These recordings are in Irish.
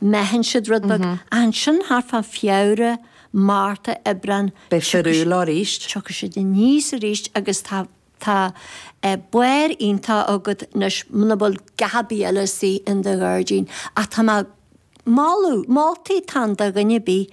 Meathann siad rud beag. Ansin thart fá Feabhra, Márta, Aibreán. Beidh siad úr arís. Tiocfaidh siad aníos arís agus tá tá barr iontach agat anois muna bhfuil a dhath ar bith eile istigh in do ghairdín ach tá mé ag moladh moltaí táim do dhuine ar bith.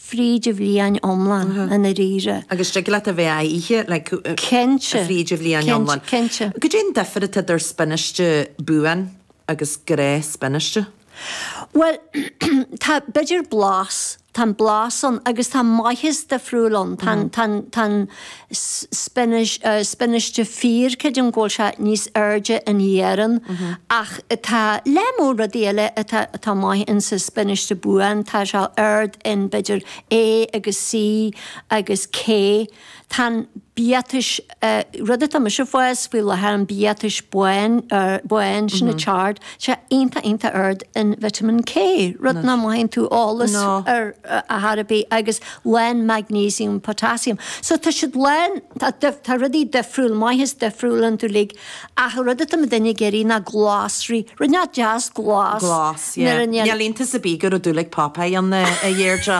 fríd a bhliain iomlán i ndáiríre. Agus thig leat a bheith á ithe, like, Cinnte. fríd a bhliain iomlán. Cinnte, cinnte. Caidé an difear atá idir spionáiste buan agus gnáthspionáiste? Bhuel, tá, b'fhéidir blas, tá an blas ann agus tá maitheas difriúil ann, tá an, tá an, tá an. spionáiste fíor, creidim go bhfuil sé níos airde in iarann ach tá lear mór rudaí eile atá maith in sa spionáiste buan, tá sé ard in Vitamin A agus C agus K. Tá an biatas, rud atá mise ag fás faoi láthair, an biatas bán, sin an chard, tá sé iontach iontach ard in Vitamin K, rud nach mothaíonn tú eolas air ar chor ar bith agus, lán maignéisiam, potaisiam. So tá siad lán, tá dif, tá rudaí difriúil, maitheas difriúil iontu uilig ach an rud atá muidinne ag iarraidh ná glasraí, rud inteacht deas glas, Glas, nuair yeah. a ndeil. Níl iontas ar bith go raibh dúil ag Popeye ann, a Dheirdre,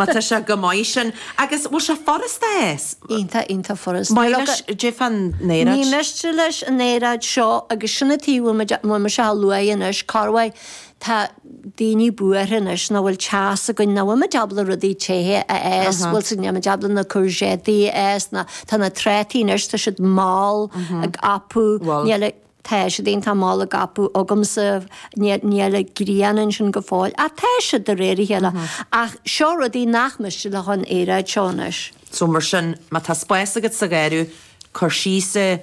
má tá sé chomh maith sin. Agus bhfuil sé furasta é? Iontach, iontach furasta. Maith leis, Jeff an aeráid. Ní miste leis an aeráid seo agus sin an t-ábhar a bhfuil muid, bhfuil mise á lua anois, Corway, Tá daoine buartha anois nach bhfuil teas againn, nach bhfuil muid ábalta rudaí téithe a fhás, bhfuil sin, nach muid ábalta na courgettes a fhás, ná tá na trátaí anois, tá siad mall ag apú, níl, tá siad fhéin, tá mall ag apú agamsa, níl an ghrian ansin go fóill, ach tá siad de réir a chéile. Ach seo rudaí nach miste leofa an aeráid seo anois. So mar sin, má tá spás agat sa gharraí, cuir síos é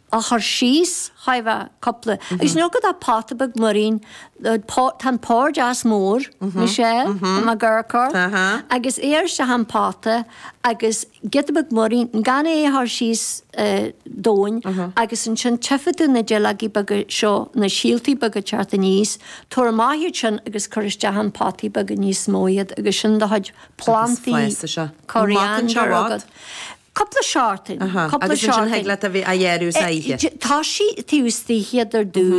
a chur síos, a Chaoimhe, cupla, agus níor go dá pota beag múirín, pá, tá an pór deas mór, níos ea, má gur cur, agus iad isteach in pota agus giota beag múirín, gan é a chur síos domhain agus ansin tchífidh tú na duilleogaí beaga seo, na síoltaí beaga ag teacht aníos, tabhair amach iad sin agus cuir isteach in potaí beaga níos mó iad agus sin do chuid plantaí curtha agat. Cupla seachtain, cupla seachtain. Agus ansin thig leat a bheith á ghearradh is á ithe. Toisigh taobh istigh iad ar dtús.